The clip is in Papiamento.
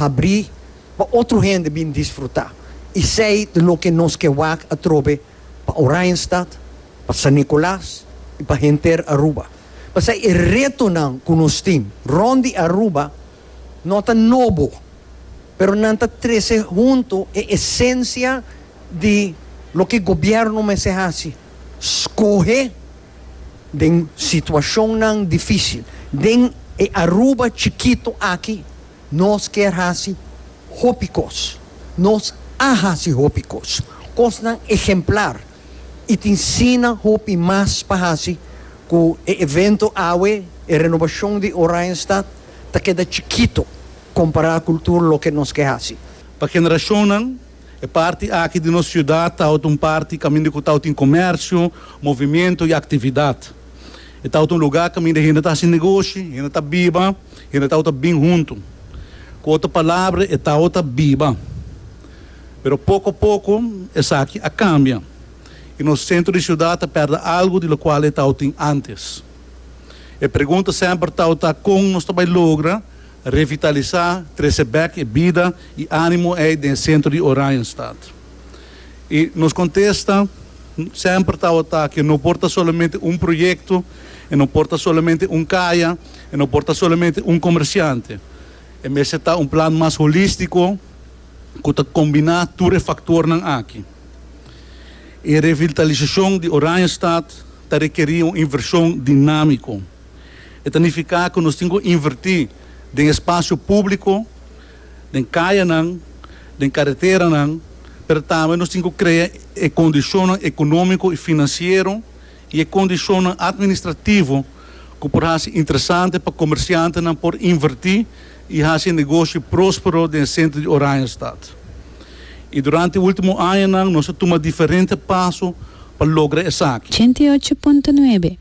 habrí pa otro hende bin disfrutá esei ta loke nos ke wak atrobe pa Oranjestad, pa San Nicolas i pa henter Aruba. Pasai e retonan ku nos tin rònt di Aruba no ta nobo, pero nan ta trese huntu e esensia di loke gobièrnu mester hasi, skohe den situashonnan difísil. Den e Aruba chikitu aki Nos kier hasi hopi kos. Nos a hasi hopi kos. Kosnan ehemplar. I tin sinan hopi mas pa hasi ku e evento awe, e renobashon di Oranjestad, ta keda chikito kompará kultur loke nos ke hasi. Pa generashonnan. E parti aki di nos ciudad ta auto un parti caminda cu ta auto tin comercio, movimiento y actividad. E ta auto un lugar caminda hende ta haci negoshi, hende ta biba, hende ta auto bin hunto. Cu otro palabra e ta auto biba. Pero poco a poco esaki a cambia y nos centro di ciudad ta perde algo di locual e ta auto tin antes. E pregunta semper ta auto ta con nos ta bay logra Revitalisá, trese bèk e bida i ánimo ei den e sentro di Oranjestad. I nos kontesta semper tabata ke no por ta solamente un proyekto, e no por ta solamente un kaya, e no por ta solamente un komersiante. E mester ta un plan mas holístiko ku ta kombiná tur e faktornan aki. E revitalisashon di Oranjestad ta rekerí un invershon dinámiko. E ta nifiká ku nos tin ku invertí den espasio públiko, den kayanan, den kareteranan, pero tambe nos tin ku krea e kondishonnan ekonómiko i finansiero i e kondishonnan atministrativo ku por hasi interesante pa komersiantenan por invertí i hasi e negoshi próspero den e sentro di Oranjestad. I durante e último añanan nos a tuma diferente paso pa logra esaki. Ochenta i ocho punto nuebe.